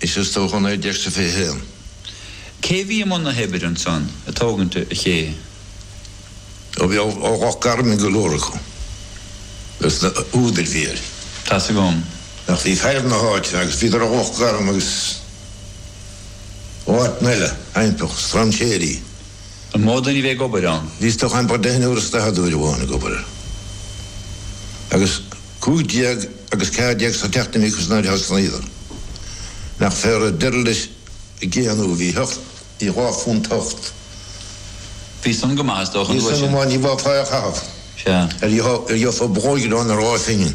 Is as toghchán ar dheis sa 21. Cé a bhí i mbun na hoibre ansan ag tógaint an ché? Ó bhí ó Loch Garman go leor acu. As na húdair bhí ar. Tá's agam. Ach bhí fear na háite agus bhíodar ó Loch Garman agus ó áiteanna eile, Aimpeach, Strainséirí. An mó duine a bhí ag obair ann? Bhí is dócha go raibh deichniúr is daichead uair amháin ag obair air, agus cúig déag agus ceathair déag sa tseachtain a bhí acu sna laethanta san Aolar. Nach fearr a d'oir leis a gcéannú, bhí ocht, bhí dhá phunt ocht. Bhí san go maith is dócha, an uair sin? Bhí san go maith, ní bheadh fáil é a chaitheamh mar gheofá bulóg aráin ar dhá phingin.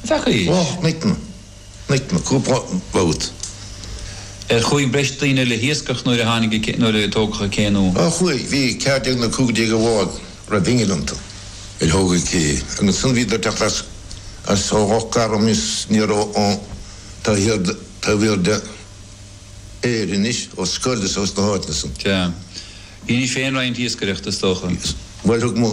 An bhfeaca fhios? Och, Micken, Micken, cúpla babhta. Ar chuaigh breis daoine le hiascach nuair a tháinig a, nuair a tógadh an cé nó? Ó chuaigh, bhí ceathair déag nó cúig déag de bháid a raibh innill iontu. Nuair a tógadh an cé. Agus ansan bhíodar ag teacht as, as ó Loch Garman is aniar ó, taobh thiar de, taobh thiar d'Éirinn anois, ó Scoil is ó sna háiteanna san. Sea. Dheinis féin roinnt iascaireachta is dócha. Bhuel, thug mo.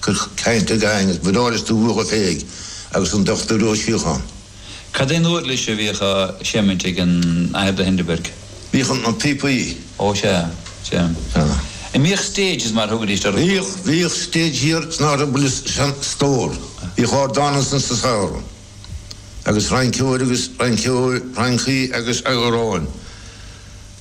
Cuir caint i gcain, is bríomhar is dúthrach a phéidh agus an Dochtúir Ó Síothcháin. Cad é an uirlis a bhíodh á seimint ag an Athair de Hindeberg? Bhíodh na píopaí. Ó sea, sea. An mbíodh stages mar a thugaidís orthu? Bhíodh, bhíodh stage thiar san áit a bhfuil an stór. Bhíodh ardán ansin sa samhradh. Agus rinceoir agus, rinceoir, rincí agus amhráin.